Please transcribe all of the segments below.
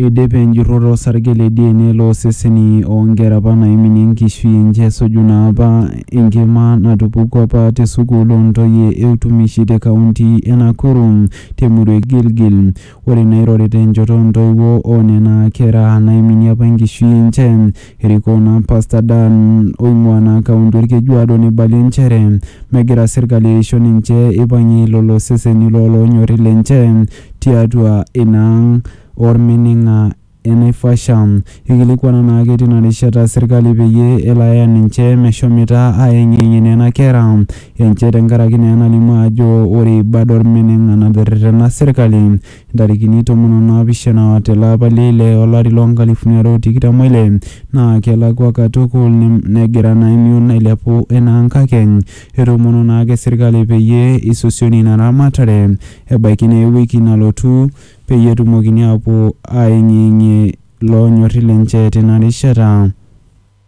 Eidipe enjurroto osarge le DNA loo seseni oo nkera apa naiminie enkishui enje esuju naa apa enkima natupukuo apa te sukuul oo ntoyie e utumishi te kaunti e Nakuru te murua e Gilgil. Ore nairorita enjoto oo ntoiwuo oo nena kera naiminie apa enkishui enje, Erikoo naa Pasta Dan oing'ua naa kaunti Olkejuado neibalie nchere megira serkali aisho ninche eipang'ie lolo seseni loo loonyori lenche tiatua ina ang Olmining'a e Naivasha. Eikilikuana naake tina rishata serkali peyie elo aya ninche meshomoita aayeng'iyeng'ie nena kera enche tenkaraki naa enalimu ajo ore ibad Olmining'a naterretena serkali Intarikini tomon o naapishana te lapa le ile o lari loo nkalifuni are o tikitam o ile, naa kelakua katukul negira naa emion ailepu enaa nkakeny. Etoomono naa ake serkali peyie isosioni ina ramatare ebaiki naa ewiki nalotu peyie etumokini aapuo aayeng'iyeng'ie loonyori lenche tina rishata.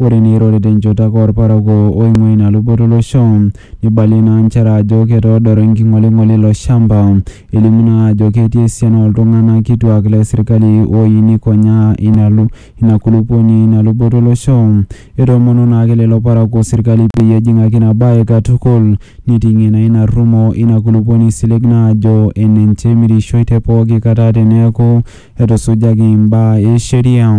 Ore neirori te nchoto ake olparakuo oing'ua ina luboto e losho, neibalie naa nchere ajo ketoodoro enking'oling'oli ilo shamba. Elimu naa ajo ketii esiana oo ltung'ana kituak le sirkali ooyieu neikonyaa ina ina kulupuoni ina luboto e losho. Etoomonuo naa ake lelo parakuo sirkali peyie ejing'aki ina bae katukul neiting'ie naa ina rrumo ina kulupuoni silig naajo enenche emirishoi te pooki kata teneaku etusujaki imbaa e sheria.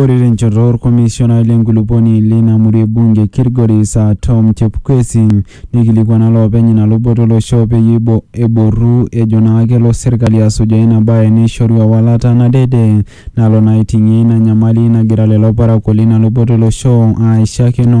Ore tenchoto olkomishonai le nkulupuoni leina murua e bunge e Kilgoris aa Tom Chepkwesi neikilikuana loopeny ina luboto o losho peyie eboru ejo naa kelo serkali asujaa ina bae neishoru ewalata nadede nalo naa aiting'ie ina nyamali nagira lelo parakuo leina luboto o losho aaishakino.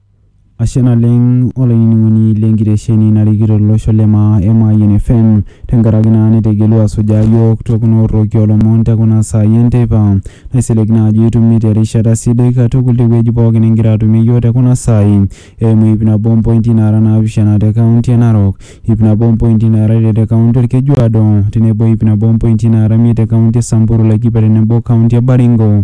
Ashe naleng olainining'oni le nkitesheni narikito olosho le maa e Mayian FM tenkaraki naa nitegelua asujaa yiok te kuna orroki olomon te kuna saai enteipa. Naisilig naa ajo itumie te rishata sidai katukul te wueji pookin nigira atumie yiok te kuna saai eimu ip nabo o mpointi naara naapishana te kaunti e Narok, ip nabo o mpointi naara ile te kaunti Olkejuado tenebo ip nabo o mpointi naara imiet te kaunti e Samburu, Laikipia tenebo o kaunti e Baringo.